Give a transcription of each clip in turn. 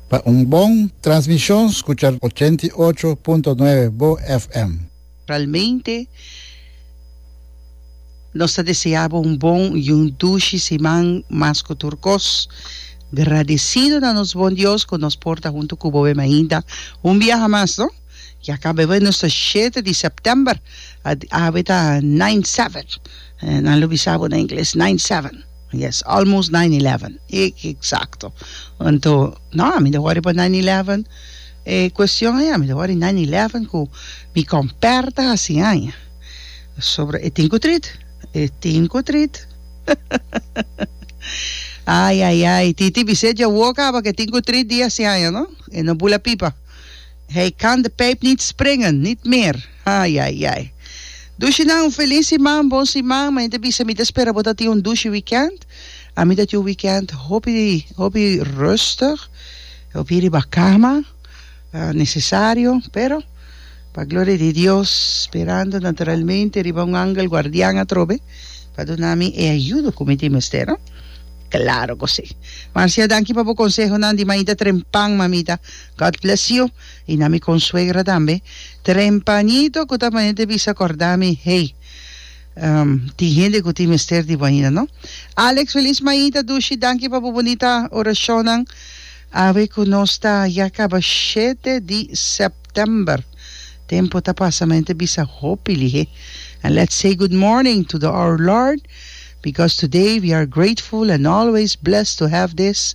Pa un bon transmishon skucha ochenta i ocho punto nuebe bo FM. Realmente nos ta deseá bo un bon i un dushi siman mas ku tur kos. Gradesido na nos Bon Dios ku nos por ta huntu ku boe mainta un biaha mas no. Ya kaba bai nos ta shete di September, awe ta nine seven, nan lo bisa bo na ingles, nine seven. Yes, almost nine eleven, exacto. Anto, no, a mi ta worry pa nine eleven. E cuestion ei, a mi ta worry nine eleven cu mi comper ta haci aña. Pasobra e tin cu trit, e tin cu trit. Ay, ay, ay, Titi Bisset dja woe caba cu e tin cu trit di haci aña, no? E no bula pipa. Hij kan de pijp niet springen, niet meer. Ai ai ai. Dushinan un feliz siman, bon siman. Mane ta bisa mi ta spera bo ta tin un dushi weekend. A mi ta tin un weekend hopi hopi rustig, hopi riba cama, ah, necesario, pero pa gloria di Dios sperando naturalmente riba un angel guardian atrobe pa duna mi e ayudo cu mi tin mester, no? Claro cu si. Marcia, danki pa bo consehonan di mainta trempan, mamita. God bless you. I na mi konsuegra tambe, trempañito ku ta manera di bisa kòrda mi, hey, um tin hende ku tin mester di bo ainda, no? Alex, Felis Maita, Dushi, danki pa bo bunita orashonnan. Awe ku nos ta ya kaba shete di sèptèmber. Tempu ta pasa, mi ta bisa hopi lihé. And let's say good morning to the our Lord, because today we are grateful and always blessed to have this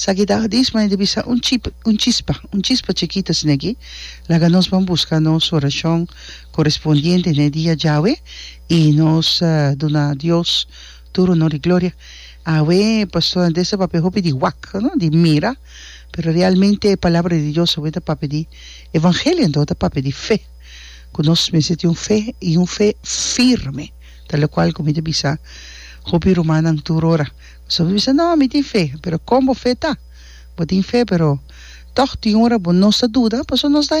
Sa ki ta hadis mane di bisa un un chispa, un chispa chikito asina aki, laga nos ban buska nos orashon korespondiente na e dia djawe i nos duna Dios tur honor i gloria. Awe pastor Andres ta papia hopi di wak, no di mira, pero realmente e palabra di Dios awe ta papia di evangelio anto ta papia di fe, ku nos mester tin un fe i un fe firme, ta lokual ku mi ta bisa hopi rumannan tur ora. So bo bisa, No, mi tin fe. Pero kon bo fe ta? Bo tin fe, pero tòg tin ora bo no sa duda, pasobra nos ta.